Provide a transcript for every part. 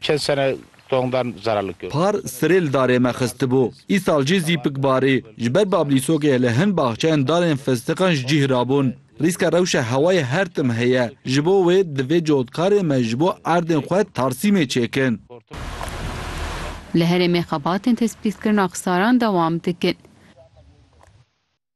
Çend sene tongdan zeralike. Par sirê li darê me xistibû. Îsal jî zîpik barî. Ji ber bablîsokê li hin baxçeyên darên fistiqan ji cîh rabûn. Rîska rewşa hewayê her tim heye. Ji bo wê divê cotkarê me ji bo erdên xwe tarsîmê çêkin. Li herêmê xebatên tespîtkirina xisaran dewam dikin.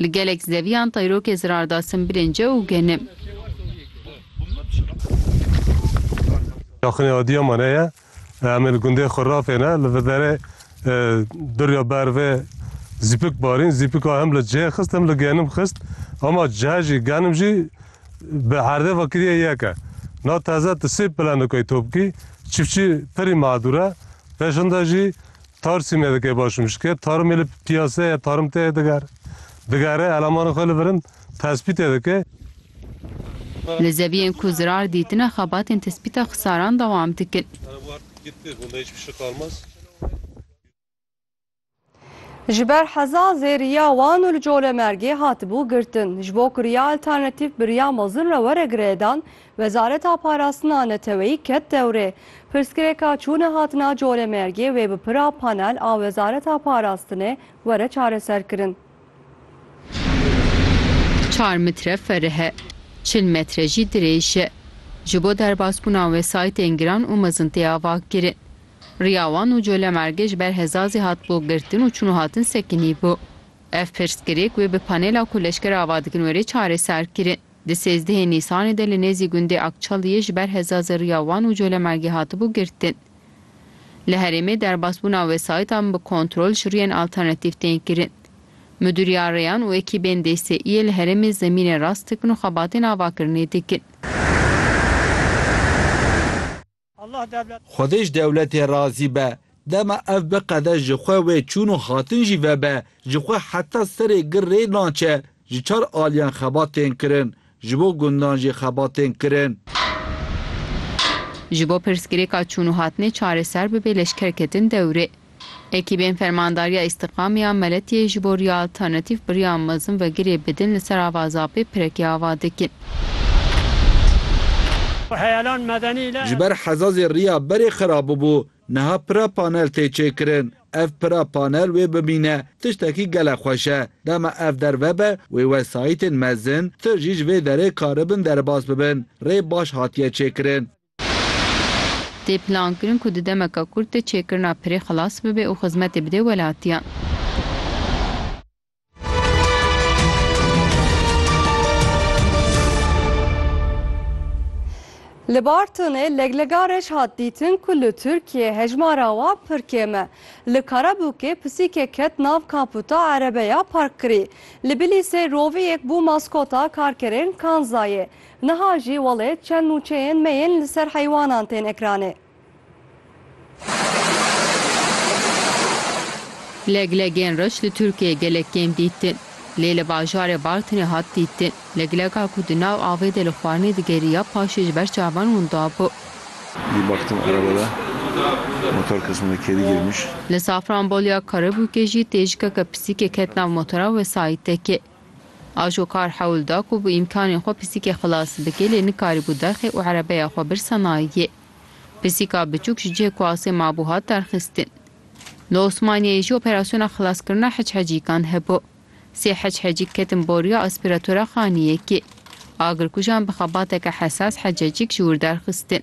Li gelek zeviyan tayrokê zirar da simbilên ce û genim. Yaxinê Adiyaman heye. Em ê li gundê xwe rafêne. Li viderê duriya bervê zîpik barîn. Zîpika hem li cê xist hem li genim xist. Ama ce jî genim jî bi herdê ve kiriye yek e. Na teze tu sê pilenikayî to bikî. Çiftçî pirî madûr e. Pêşinde jî Tar sîme dike başûm ji ke tarmê li pîyaseya tarm te diger digere elemanên xwe li vir in tespîtê dike. Li zeviyên ku zirar dîtine xebatên tespîta xisaran dewam dikin. Ji ber heza zêriya wan û li Colemêrgê hatibû girtin. Ji bo kuriya alternatîf bi riya mezin re were girêdan, Wezareta Parastina Neteweyî ket dewrê. Pirsgirêka çûna hatina Colemêrgê wê bi pira panel a Wezareta Parastinê were çareserkirin. Çar metre ferih e, çil metre jî dirêj e. Ji bo derbasbûna wesayîtên giran û mezin tê avakirin. Riya wan û Colemêrgê ji ber hezazê hatibû girtin û çûn û hatin sekinîbû. Ev pirsgirêk wê bi panela ku leşker ava dikin were çareserkirin. Di sêzdehê Nîsanê de li nêzî gundê Akçaliyê ji ber heza zirriya wan û colemagî hatibû girtin. Li herêmê derbasbûna wesayîtan bi kontrol ji rûyên alternatîf tên kirin. Midûriya Rêyan û ekîbên DSE'yê li herêmê zemînê rast dikin û xebatên avakirinê dikin. Xwedê ji dewletê razî be. Dema ev biqede ji xwe wê çûn û hatin jî vebe, ji xwe heta serê gir rê naçe. Ji çar aliyan xebat tên kirin. Ji bo gundan jî xebat tên kirin. Ji bo pirsgirêka çûn û hatinê çareser bibe leşkerketin dewrê. Ekîbên Fermandariya Îstîqamê ya Meletiyê ji bo riya alternatîf bi riya mezin vegirê bidin li ser ava Zapê pirekê ava dikin. Ji ber hezazê riya berê xera bûbû, niha pira panel tê çêkirin. Ev pira panel wê bimîne tiştekî gelek xweş e. Dema ev derve be wê wesayîtên mezin, tu jî ji vê derê karibin derbas bibin. Rê baş hatiye çêkirin. Tê plankirin ku di demeke kurt de çêkirina pirê xilas bibe û xizmetê bidê welatiyan. Li Bartinê leglegarek hat dîtin ku li Tirkiyê hejmara wan pir kêm e. Li Karabûkê pisîkek ket nav kaputa erebeya parkkirî. Li Bilîsê roviyek bû maskota karkerên Kanzayê. Niha jî welê çend nûçeyên me yên li ser heywanan tên ekranê. Leglegên reş li Tirkiyeyê gelek kêm dîtin. Lê li bajarê Bartinê hat dîtin. Legleka ku di nav avê de li xwarinê digeriya paşê ji ber çavan winda bû. Di baktım araba de motor kısmında kedi girmiş. Li Safranbolya Karabûkê jî têjikeke pisîkê ket nav motora wesayîtekê. Ajo kar hewl da ku bi îmkanên xwe pisîkê xilas bike lê nikarîbû derxê û erebeya xwe birsa nayê. Pisîka biçûk ji cihê ku asê mabû hat derxistin. Li Osmaniyeyê jî operasyona xilaskirina heçhecîkan hebû. Sê heçhecîk ketin boriya aspîratora xaniyekê. Agirkujan bi xebateke hesas hececîk ji wir derxistin.